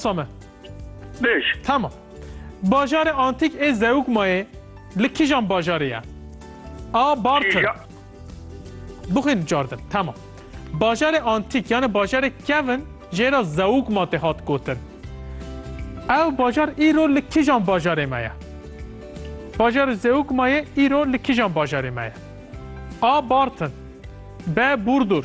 Same. Bêj. Tamam. Bajarê antîk ê Zeugmayê li kîjan bajarê ye? A. Bartın. Kîja. Bixwînin cardin. Tamam. Bajarê antîk yani bajarê kevn jê re Zeugma tê hat gotin. Ew bajar îro li kîjan bajarê me ye? Bajarê Zeugmayê îro li kîjan bajarê me ye? A. Bartın. B. Burdur.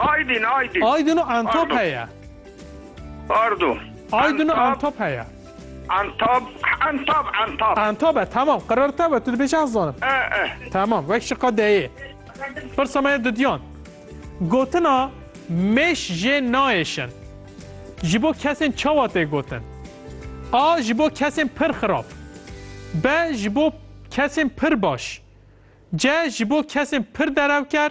Aydin, Aydin. Aydin û Antab heye. Pardon. Aydin û Antab heye. Antab, Antab, Antab. Antab e, tamam. Qirrte be, tu dibêjî ez zanim. E, e. Tamam, wek ji qe deyê. Pirsa me ye dudiyan. Gotina mêş jê nayêşin. Ji bo kesên çawa tê gotin? A. Ji bo kesên pir xirab. B. Ji bo kesên pir baş. C. Ji bo kesên pir derewker.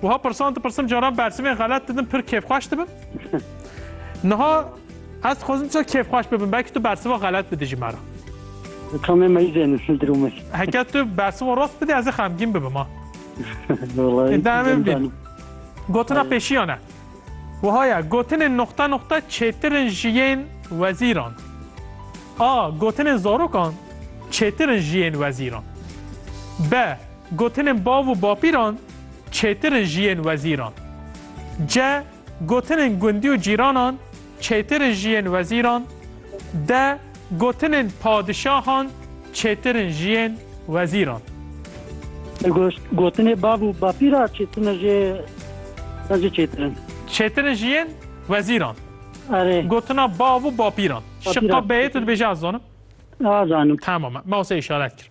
Wiha pirsan dipirsim caran bersivên xelet didim pir kêfxweş dibim. Niha ez dixwazim çi kêfxweş bibim belkî tu bersiva xelet bidî ji me re. Tomê me izê nisil dirûme. Heke tu bersiva rost bidî ez ê xemgîn bibim ha. Demê bîn. Gotina pêşiyan e. Wiha ye gotinên noxta noxta çêtirin ji yên wezîran. A. Gotinên zarokan çêtirin ji yên wezîran. B. Gotinên bav û bapîran çêtir in ji yên wezîran. Ce, Gotinên gundî û cîranan çêtir in ji yên wezîran. De, Gotinên padişahan çêtir in ji yên wezîran. De, Gotinê bav û bapîra çêtir in ji wezî çêtir in. Çêtir in ji yên wezîran. Erê. Gotina bav û bapîran. Şiqa beyê tu dibêjî ez zanim? A zanim. Tamam e. Mawsê îşaret kir.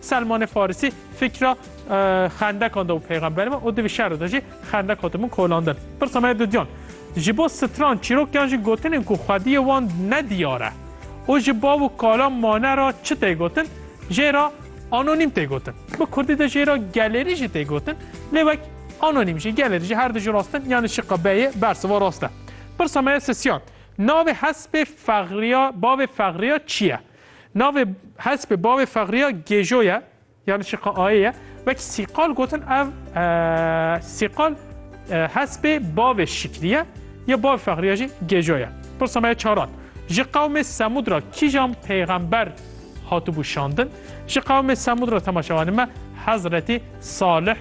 Selmanê Farisî fikra xendekan da û peyxemberê me û di vî şero de jî xendek hatibûn kolandin. Pirsa me ya dudyan, ji bo stran çîrok yan jî gotinên ku xwediyê wan ne diyar e û ji bav û kala mane re çi tê gotin jê re anonîm tê gotin. Bi kurdî de jê re gelerî jî tê gotin lê wek anonîm jî, gelerî jî her du ji rast in yanî şiqa be yê bersiva rast e. Pirsa me ya sisiyan, navê hespê Fexriya bavê Fexriya çi ye? Navê hespê bavê Fexriya Gêjo ye ya li Çiqaayê ye. Wek Sîqal gotin ev Sîqal hespê bavê Şikrî ye ya bavê Fexriya jî Gêjo ye. Pirsa me ye çaran. Ji qewmê Semûd ra kîjan pêxember hatibû şandin? Ji qewmê Semûd ra temaşevanê me Hezretî Salih